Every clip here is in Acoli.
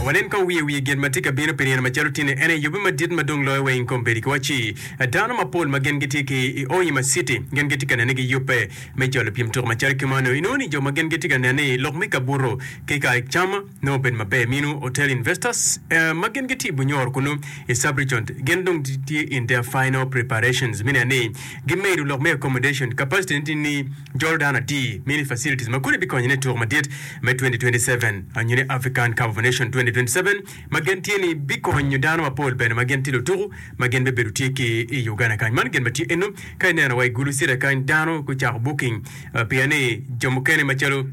Wanen kong wiye wiye gin ma tye ka bino pi nino macalo tini ene yubbe madit ma dong loyo wa ing kom bedi ki wa ci. Dano mapol ma gin gitye ki i Oima city gin gitye ka nene gi yubbe me cwalo pyem tuko macalo ki mano. Inongo ni jo ma gin gitye ka nene ni lok me kabuto ki ka cam nongo obedo maber minu hotel investors ma gin gitye i Bunyoro kunu i Sub-region gin dong gitye in their final preparations me neno ni gimedo lok me accommodation capacity ne tye ni Jolo dano atir, Mini Facilities ma kodi bikonyo ne tuko madit me 2027 nyo ni African Cup of Nation 2027 ma gen tye ni bikonyo dano mapol bene ma gin tye lutuku ma gin bibedo tye ki i Uganda kany. Man gin ma tye eno ka ineno wa i Gulu City kany dano gucako booking pien ni jo mukene macalo.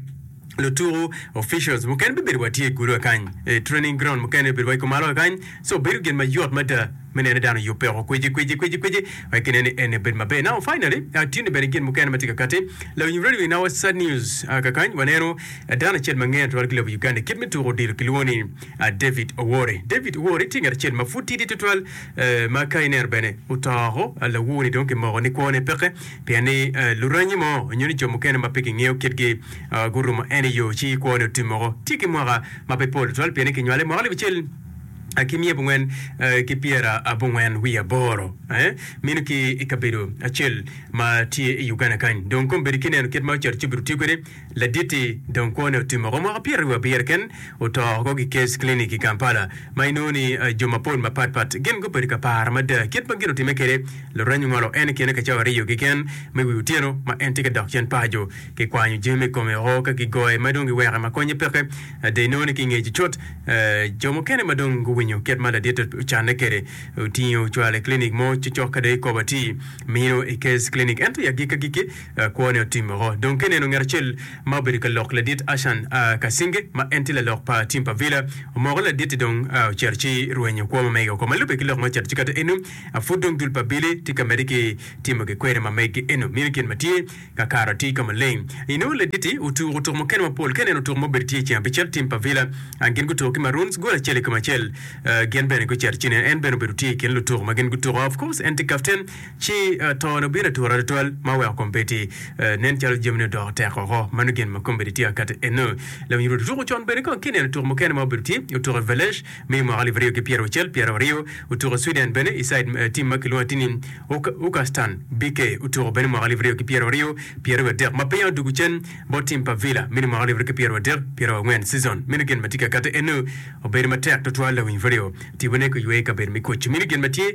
lutuku, officials, mukene bibedo wa tye i gudo kany, i training ground mukene obedo wa i kumalo kany. So bedo gin ma yot mada me nene dano yubbe oko kweci kweci kweci kweci wek kine ni ene bedo maber. Now finally, ah, tye ni bene gin mukene ma tye ka kati. Lawiny wi radio in our sad news, ah, kakany waneno dano acel ma ngene twatwal ki lobo Uganda kit me tuku odilo kilwongo ni, ah, David Owori. David Owori tye ngat acel ma pud tidi twatwal, eh, ma ka ineno bene oto oko, ah, lawur ni dong kimoko ni kwone peke. Pien ni lurangi mo nyo ni jo mukene ma pe kingeyo kitgi gurumo en i yo ci kwone otim moko. Tye ki mwaka ma pe pol tutwal pien ni kinywale i mwaka alip acel ki miya abongwen ki pyera abongwen wiye aboro meno ki i kabedo acel ma tye i Uganda kany. Dong kombedo kineno kit ma Carcup birotiyo kwede. Laditi dong kwone otimo ko mwaka pyeraryo wiabiro ken oto ko ki Case Clinic i Kampala ma inongo ni jo mapol mapat pat gin gubedo ka paro mada kit ma gin otime kede lureny ongolo en ikine ka cawa ariyo kiken me wi otyeno ma en tye ka dok cen paco ki kwanyo jami i kome o ka ki goye ma dong gi weke ma konye peke ada inongo ni ki ngeci cut jo mukene ma dong guwinyo kit ma ladit ocanne kede otinge ocwalo i clinic mo cocok ka dong ikobo ati mino i Case Clinic ento i agikki agikki Kwone otim woko dong ka eneno ngat acel ma obedo ka lok ladit Ashan kacinge, ma en tye lalok pa tim pa Villa. Omoko ladit-ti dong ocito ci rwenyo kwo ma mege woko. Ma lubbe ki lok ma ocito ci kata eno a pud dong dul pa Billy tye ka medde ki timo gikwena ma mege eno. Mini gin ma tye ka karo atir ka maleng. Inongo ladit-ti otuko tuk mukene mapol. Ka eneno tuk ma obedo tye i ceng abicel tim pa Villa, gin gutuko ki Maroons gol acel i kom acel. Gin bene gucito ci nen en bene obedo tye i kin lutuko ma gin gutuko. Of course en tye kapten. Ci tone obino atura tutwal ma oweko kombeddi nen calo jamine odoko tek woko. Mano gin ma kombeddi tye ka kati eno. Lawiny Ruto tuko con bene kong ki neno tuko mukene ma obedo tye otuko i Velež me i mwaka alip aryo ki pyera wucel, pyera waryo otuko i Sweden bene i side team ma kilwongo ati ni Ucastan BK otuko bene mwaka alip aryo ki pyera waryo, pyera wiye adek ma piny odugu cen bot team pa Villa me ni mwaka alip aryo ki pyera wadek, pyera wangwen season. Meno gin ma tye ka kati eno. Obedo matek tutwal lawiny Ruto tipo ne ki ywe i kabedo me koco. Meno gin ma tye.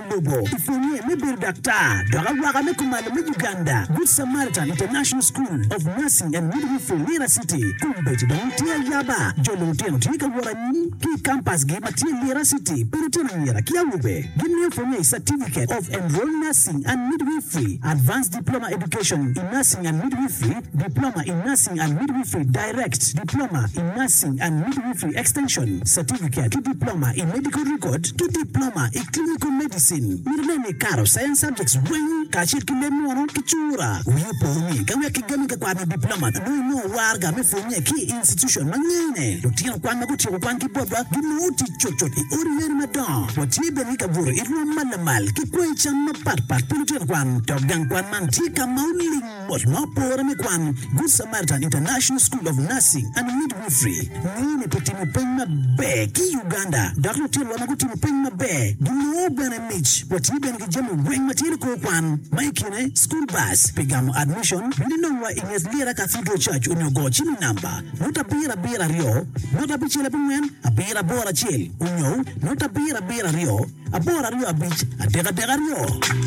Alubo i pwonye me bedo daktar dok awaka me kumalo me Uganda Good Samaritan International School of Nursing and Midwifery, Lira City. Kombeddi dong tye ayaba, jo lulutino tye ka wot anyim ki i kampasgi ma tye Lira City pa lutino anyira ki awobe. Gimiyo pwonye i Certificate of Enrolled Nursing and Midwifery, Advanced Diploma Education in Nursing and Midwifery, Diploma in Nursing and Midwifery, Direct, Diploma in Nursing and Midwifery Extension, Certificate, ki Diploma i Medical Record ki Diploma i Clinical Medicine. Mito nen ni ikato Science Subjects weng kacel ki leb munu ki cura. Wii opo ni ka wek kigami ka kwaro nyo Diploma nongo inongo warga me pwonye ki i institution ma ngene lutino kwan ma gutyeko kwan ki botwa ginongo tic cutcut i odi leno madongo. Watye bene ki kabuto i rwom ma lamal ki kwanyi cam mapatpat pi lutino kwan dok gang kwan man tye ka ma oling Ot ma opore me kwan, Good Samaritan International School of Nursing and Midwifery, ngeyo ni gutimo peny maber ki i Uganda dok litinowa ma gutimo peny maber ginongo bene mic. Watye bene ki jami weng ma tye ni kor kwan, ma i kine school bus pi gamo admission, bino inongwa i nget Lira Cathedral Church onyo go cimo namba nota abiro abiro aryo nota abicel abongwen abiro aboro acel onyo nota abiro abiro aryo aboro aryo abic adek adek aryo.